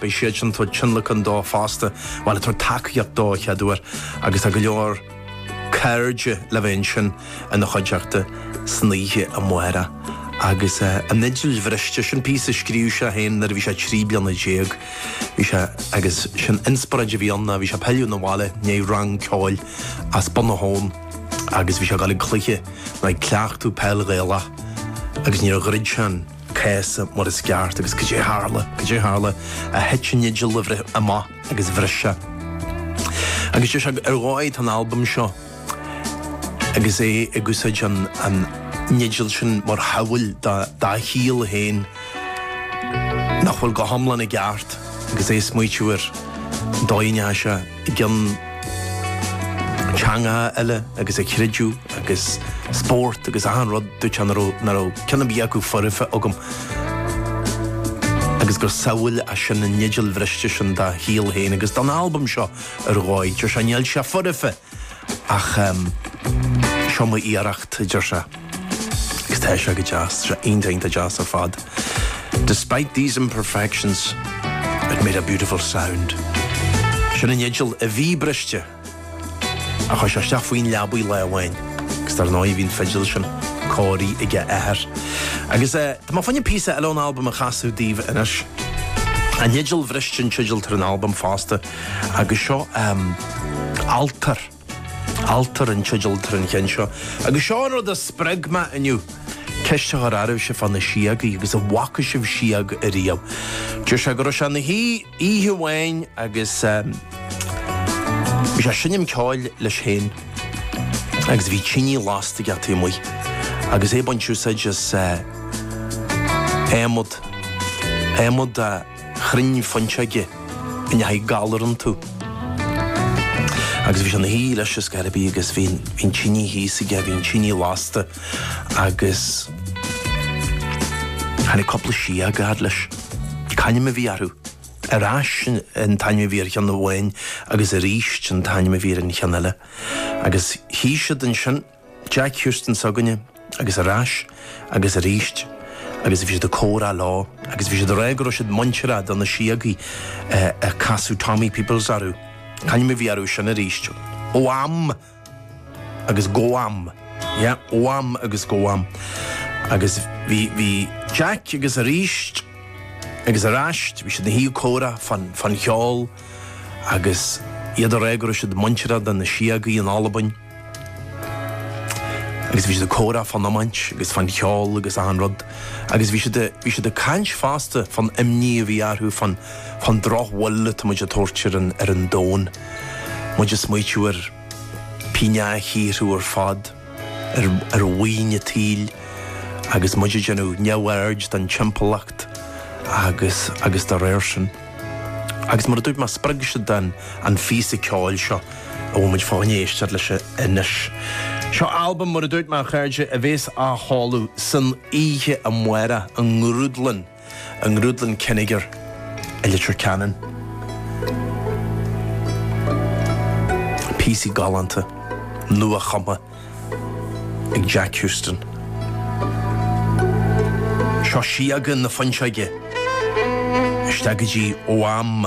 Beidh siad sin ag tabhairt tionlacan dó fosta, bhuel ag tabhairt tacaíocht dó a chéaduair agus tá go leor cairde le bheith ansin ina chuideachta san oíche amárach. Agus an fhidil bhriste, sin píosa a scríobh sé féin nuair a bhí sé trí bliana déag. Bhí sé, agus sin inspioráid a bhí ann, bhí sé ag pilleadh na bhaile i ndiaidh rang ceoil as Bun na hAbhann agus bhí sé ag dul chuig cluiche nó ag cleachtadh peil Ghaelach agus níor dhruid sé an cása mar is ceart agus caidé a tharla, caidé a tharla ach thit an fhidil amach agus bhris sé. Agus deir sé ar dhóigh tá an albam seo agus é ag úsáid an an fhidil sin mar shamhail dá dá shaol féin nach bhfuil go hiomlán i gceart agus é ag smaoitiú ar dóigh an fhaise. den teangacha eile agus creideamh agus spórt agus achan rud dúirt nach raibh nach raibh cionn ar bith acu foirfe agam agus gur samhail é sin an fhidil bhriste sin dá shaol féin agus don albam seo ar dhóigh deir sé níl sé foirfe ach seo mo iarracht deir sé. Tá sé go deas. Tá sé iontach deas ar fad. Despite these imperfections, it made a beautiful sound. Sin an fhidil a bhí briste. Ach chuir sé isteach faoin leabaidh lá amháin agus dar ndóigh bhí an fhidil sin cóirithe ag a athair. Agus eh, tá mé fá choinne píosa eile ón albam a chasadh daoibh anois. An fhidil bhriste an teideal atá ar an albam fosta agus seo ehm, Altar. Altar an teideal atá ar an cheann seo. Agus seo an rud a spreag mé inniu, ceist a chur oraibhse fá na síogaí agus an bhfaca sibh sióg ariamh. Deir sé go raibh sé ina shuí oíche amháin agus bhí sé ag seinm ceoil leis féin agus bhí tinidh lasta aige taobh amuigh agus é ag baint úsáid as adhmad, adhmad chrainn fuinseoige ina raibh galar iontu. Agus bhí sé ina shuí leis cibé ar bith agus bhí an tinidh thíos aige, bhí an tinidh lasta agus tháinig cúpla sióg a fhad leis. C'ainm a bhí orthu. Ar ais an t-ainm a bhí ar cheann amháin agus arís an t-ainm a bhí ar an cheann eile. Agus shuigh siad ansin. Jack Houston s'againne, agus ar ais, agus arís, agus bhí siad ag comhrá leo, agus bhí siad ag rá go raibh siad muinteartha do na síogaí a casadh Tommy Peoples orthu. C'ainm a bhí orthu sin arís. Ó am agus go ham. Yeah, ó am agus go ham. Agus bhí, bhí Jack agus arís, agus ar ais, bhí siad ina shuí ag comhrá fán, fán cheol, agus iad ag rá go raibh siad muinteartha do na síogaí in Albain. Agus bhí siad ag comhrá fán iomáint agus fán cheol agus achan rud. Agus bhí siad, bhí siad ag caint fosta fán imní a bhí orthu fán, fán drochbhail atá muid ag tabhairt ar an, ar an domhan. Muid ag smaoitiú ar pingneacha a shaothrú ar fad, ar, ar mhaoin an tsaoil agus muid ag déanamh neamhaird den timpeallacht agus, agus dá réir sin. Agus mar a dúirt mé, spreag siad an phíosa ceoil seo a bhfuil muid ag gabháil a éisteacht leis anois. Seo albam, mar a dúirt mé, a chairde, a bhéas á sheoladh san oíche amárach i ngrúdlann, i ngrúdlann Kinnegar i Leitir Ceanainn. Píosaí galánta, nua-chumtha. ag Jack Houston. Seo Sióga na Fuinseoige isteach go dtí ó am.